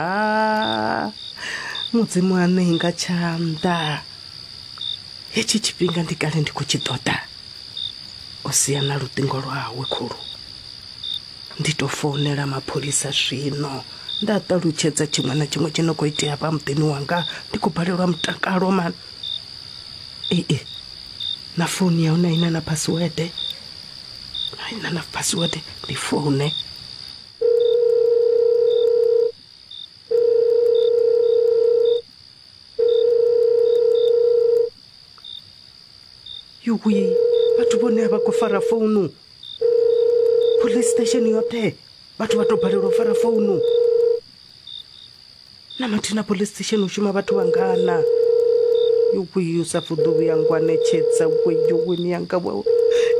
a mudzimu aṋe inga tshanḓa hetshi tshifhinga ndi kale ndi khou tshi ṱoḓa o sia na luṱingo lwawe khulu ndi tou founela mapholisa zwino nda ṱalutshedza tshiṅwe na tshiṅwe tshi no khou itea vha muḓini wanga ndi khou balelwa mutakalo mani ee na founu ya hone aina na password aina na password ndi foune yuwi vhathu vhone a vha khou fara founu police station yoṱhe vhathu vha tou balelwa u fara founu na mathina police station u shuma vhathu vhangana yuwi u sa fuḓo vhuya ngwanetshedza we yuwi miyanga wawe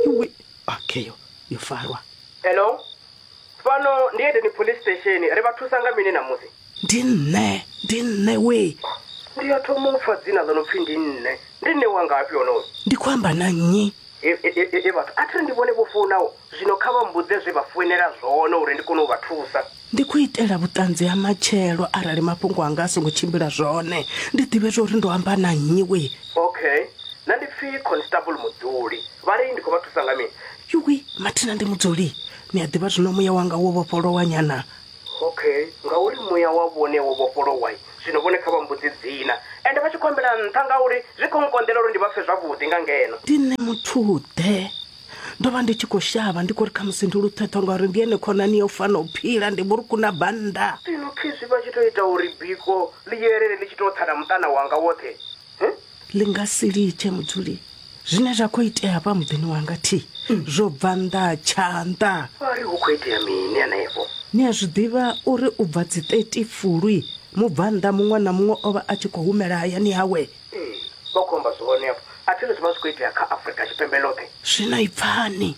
yuwi okay yo yo farwa hello Fhano ndi Edeni Police Station. Ri vha thusa nga mini ṋamusi? Ndi nṋe. Ndi nṋe wee. Ndi a thoma u pfa dzina ḽo no pfi ndi nṋe. Ndi nṋe wa ngafhi onoyo? Ndi khou amba na nnyi? He, he, he, he, he vhathu, a thi ri ndi vhone vho founaho. Zwino kha vha mmbudze zwe vha founela zwone uri ndi kone u vha thusa. Ndi khou itela vhuṱanzi ha matshelo arali mafhungo anga a songo tshimbila zwone, ndi ḓivhe zwa uri ndo amba na nnyi wee. Okay. Nṋe ndi pfi Constable Muḓuli. Vha ri ndi khou vha thusa nga mini? yuwi mathina ndi mudzuli ni a ḓivha zwino muya wanga wo vhofholowa nyana okay ngauri muya wa vhone wo vhofholowa zwino vhone kha vha mbudzi dzina ende vha tshi khou ambela nṱha ngauri zwi khou nkonḓela uri ndi vha pfe zwavhuḓi nga ngeno ndi nṋe muthuḓe ndo vha ndi tshi khou shavha ndi khou ri khamusi ndi luṱhethwa ngauri ndi ene khonani ya u fana u phila ndi vhuruku na bannda zwino khezwi vha tshi tou ita uri biko ḽi yelele ḽi tshi tou tsa na muṱana wanga woṱhe ḽi nga si litshe mudzuli zwine zwa khou itea hafha muḓini wanga thi zwo bva nnḓa tshanḓa vha ri hu khou itea mini hanefho ni a zwi ḓivha uri u bva dzi 30 fulwi mubvannḓa muṅwe na muṅwe o vha a tshi khou humela hayani hawe ee vha khou amba zwone afho a thina zwi vha zwi khou itea kha afurika tshipembe ḽoṱhe zwino i pfani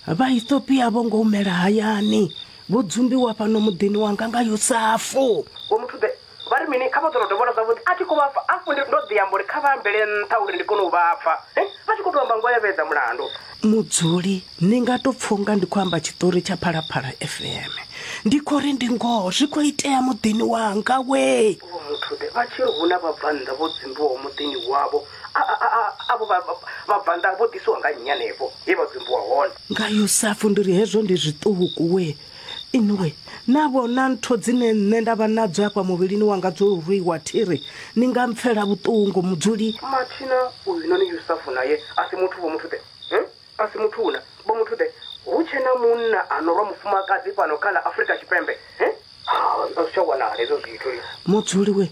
vhaethiopia vho ngo humela hayani vho dzumbiwa fhano muḓini wanga nga yosafu vho muthu ḓe Vha ri mini? Kha vha ḓo tou dovholola zwavhuḓi, A thi khou vha pfa. Hafhu ndi, ndo ḓi amba uri kha vha ambele nṱha uri ndi kone u vha pfa. He, vha tshi khou tou amba ngoho ya vhedza mulandu. Mudzuli, Ni nga tou pfa u nga ndi khou amba tshiṱori tsha Phalaphala FM. Ndi khou ri, Ndi ngoho, zwi khou itea muḓini wanga wee! Vho Muthude vha tshi ri, Hu na vhabvannḓa vho dzumbiwaho muḓini wavho. A, a, a, avho vha, vha, vhabvannḓa vho ḓisiwa nga nnyi hanefho he vha dzumbiwa hone? Nga Yosafu, Ndi ri, Hezwo ndi zwiṱuku wee! inwe na vhona ntho dzine nṋe nda vha nadzo afha muvhilini wanga dzo rwiwa thiri ni nga mpfela vhuṱungu mudzuli mathina uyu noni yusafu naye a si muthu vho muthu ḓe hmm? a si muthu una vho muthu ḓe hu tshe na munna a no rwa mufumakadzi fhano kha ḽa afrika tshipembe hmm? ha a zwi tsha wanala hezwo zwithu mudzuli we